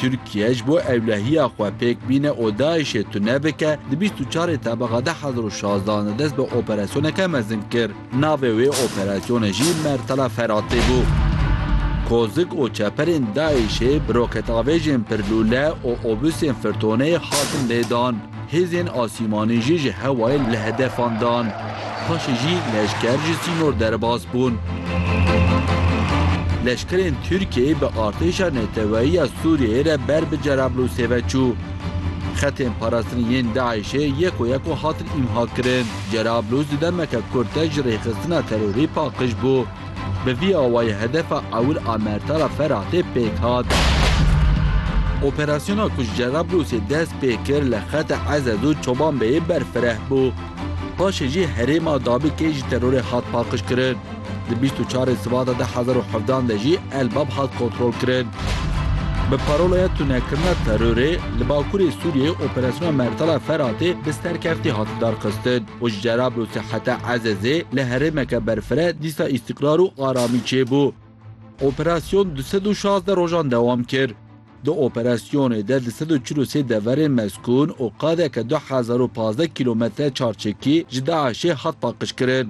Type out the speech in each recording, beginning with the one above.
Tirkiye ji bo ewlehiya xwe pêk bîne û DAIŞ'ê tune bike, di bîst û çarê Tebîga du hezar û şazdeh de dest bi operasyoneke mezin kir. Navê wê operasyonê jî Mertala Feratê bû. Kozik û çeperên DAIŞ'ê bi roketavêjên pirlûle û obusên firtoneyê hatin lêdan. Hêzên asîmanê jî ji hewayê li hedefan dan. Paşê jî leşker ji sînor derbas bûn. Leşkerên Tirkiyeyê bi artêşa neteweyî ya Sûriyeyê re ber bi Cerablûsê ve çû. Xetên parastinê yên DAIŞ'ê yek û yek û hatin îmha kirin. Cerablûs di demeke kurt de ji rêxistina terorî paqij bû. Bi vî awayî hedefa ewil a Mertara Feratê pêk hat. Operasyona ku ji Cerablûsê dest pê kir li xeta Ezez û Çobanbeyê berfireh bû. Paşê jî herêma Dabikê ji terorê hat paqijkirin. Di bîst û çarê Sibata du hezar û hevdeh de jî El Bab hat kontrolkirin. Bi parolaya tunekirina terorê, li bakurê Sûriyeyê operasyona Mertara Feratê bi serkeftî hat darxistin. û ji Cerablû seheta Ezezê li herêmeke berfireh dîsa îstîqrar û aramî çêbû. Operasyon du sed û şazdeh rojan dewam kir. Di operasyonê de du sed û çil û sê deverên mezkûn û qadeke du hezar û pazdeh kîlometre çarçekî ji DAIŞ'ê hat paqijkirin.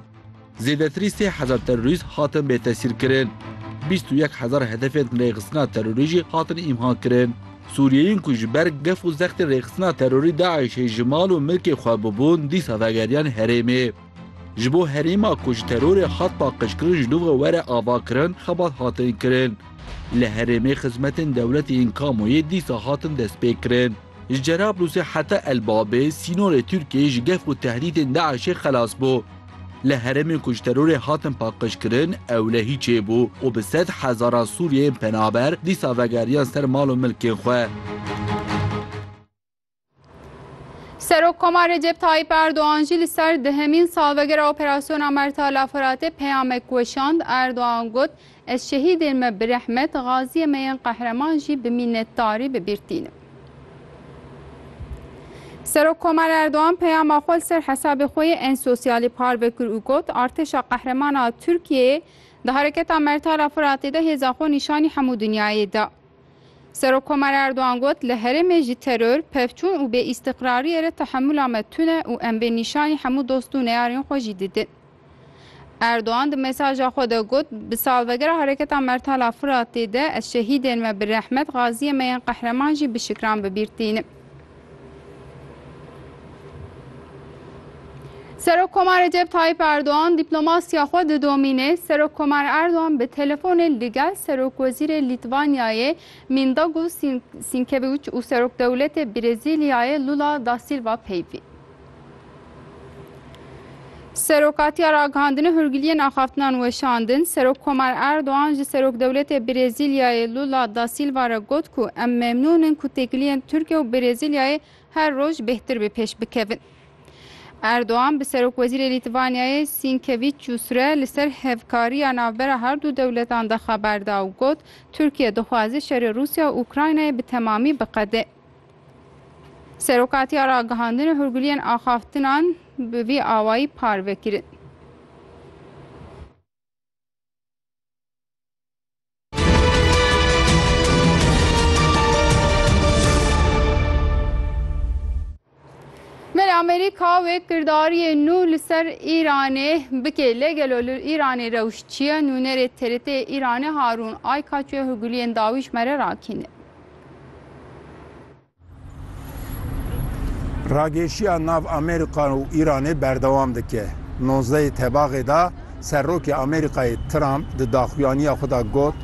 Zêdetirî sê hezar terorîst hatin bêtesîrkirin. Bîst û yek hezar hedefên rêxistina terorî jî hatin îmhakirin. Sûriyeyên ku ji ber gef û zextên rêxistina terorî DAIŞ'ê ji mal û milkê xwe bûbûn dîsa vegeriyan herêmê. Ji bo herêma ku ji terorê hat paqijkirin ji nûve were avakirin xebat hatin kirin. Li herêmê xizmetên dewletê yên kamoyê dîsa hatin destpêkirin. Ji Cerablusê heta El Babê sînorê Tirkiyê ji gef û tehdîtên DAIŞ'ê xelas bû. Li herêmên ku ji terorê hatin paqijkirin ewlehî çêbû û bi sed hezaran Sûriyeyên penaber dîsa vegeriyan ser mal û milkên xwe. Serokkoma Recep Tayyîp Erdogan jî li ser dihemîn salvegera operasyona Mertala Firatê peyamek weşand. Erdogan got, Ez şehîdên me bi rehmet, gaziyê me yên qehreman jî bi mînetdarî bi bîr tînim. Serokkomer Erdogan peyama xwe li ser hesabê xwe yê ên sosyalî parve kir û got, Artêşa Qehreman a Tirkiyeyê di Hereketa Mertar a Firatê de hêza xwe nîşanî hemû dinyayê da. Serokkomar Erdogan got, Li herêmê jî teror, pevçûn û bêîstiqrariyê re tehemûla me tune û em vê nîşanî hemû dost û neyarên xwe jî didin. Erdogan di mesaja xwe de got, Bi salvegera Hereketa Mertala Firatê de ez şehîdên me bi rehmet, gaziyên me yên qehreman jî bi şikran bi bîr tînim. Serok Komar Recep Tayyip Erdoğan diplomasya xwe didomîne. Serok Komar Erdoğan bi telefonê li gel Serok Wezîrê Lîtvanyayê Mindagu Sinkeviç û Serok Dewletê Brezîlyayê Lula da Silva peyvî. Serokatiya ragihandinê hûrgiliyên axaftinan weşandin, Serok Komar Erdogan ji Serokdewletê Brêzîlyayê Lula da Sîlva re got ku em memnûn in ku têkiliyên Tirkiye û Brêzîlyayê her roj bêhtir bi pêş bikevin. Erdogan bi Serokwezîrê Lîtvaniyayê Sînkevîçyûs re li ser hevkariya navbera her du dewletan de xeber da û got, Tirkiye dixwaze şerê Rûsya û Ukraynayê bi temamî biqede. Serokatiya Ragihandin û Hûrguliyên Axaftinan bi vî awayî parve kirin. Mele Amerîka wê kirdariyê nû li ser Îranê bikê lê gelo li Îranê rewş çi ye? Nûnerê TRT'ê Îranê Harûn Aykaç wê hûguliyên dawî ji me re rakîne. Rageşiya nav Amerîka û Îranê berdewam dike. Nozdehê tebaxê de Serokê Amerîkayê Trump di daxuyaniya xwe de got,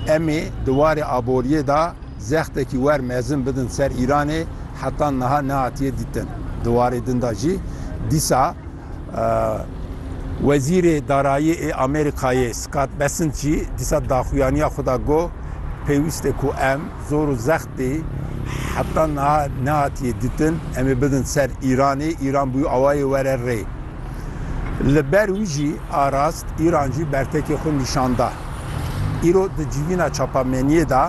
Em ê di warê aboriyê de zextekî wer mezin bidin ser Îranê heta niha nehatiye dîtin. Di warê din de jî dîsa Wezîrê Darayî ê Amerîkayê Scott Bessent jî dîsa di daxuyaniya xwe de got, Pêwîst e ku em zor û zextê heta niha nehatiye dîtin em ê bidin ser Îranê, Îran bûye awayê were rê. Li ber wî jî arast Îran jî bertekê xwe nîşan da. Îro di civîna çapameniyê de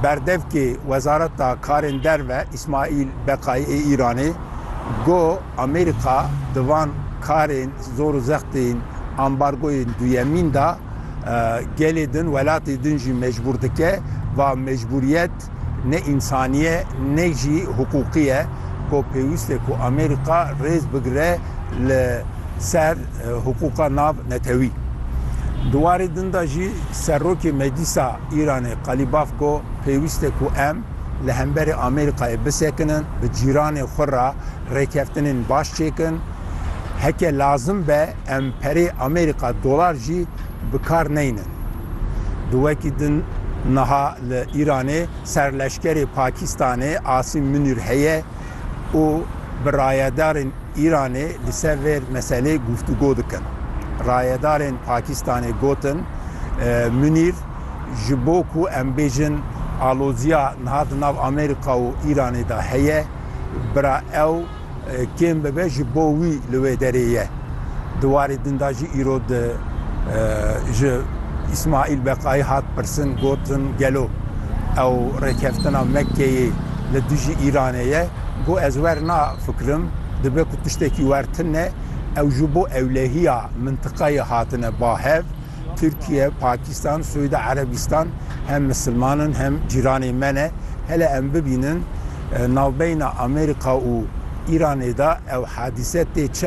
berdevkê Wezareta Karên Derve Îsmaîl Beqayî ê Îranê got, Amerîka di van karên zor û zext ên ambargoyên duyemîn de gelê din, welatê din jî mecbûr dike va mecbûriyet dest. Ne însanî ye ne jî hiqûqî ye ku pêwîst e ku Amerîka rêz bigire li ser hiqûqa nav netewî. Di warê din de jî Serokê Meclîsa Îranê Qalîbaf got, Pêwîst e ku em li hemberî Amerîkayê bisekinin, bi cîranê xwe re rêkeftinên baş çêkin. Heke lazim be em perê Amerîka dolar jî bi kar neynin. Di wekî din niha li Îranê serleşkerê Pakîstanê Asîm Munîr heye û bi rayedarên Îranê li ser vê meselê guftûgo dikin. Rayedarên Pakîstanê gotin, Munîr ji bo ku em bêjin aloziya niha di nav Amerîka û Îranê de heye, bira ew, Kêm bibe ji bo wî li wê derê ye. Di warê din de jî îro di ji Îsmaîl Beqayî hat pirsin gotin gelo ew rêkeftina Mekkeyê li dijî Îranê ye? Got ez wernafikirim, dibe ku tiştekî wer tune, ew ji bo ewlehiya mintiqeyê hatine ba hev. Tirkiye, Pakistan, Suudi Erebistan hem misilman in hem cîranê me ne. Hele em bibînin navbeyna Amerîka û Îranê de ew hadîse tê çi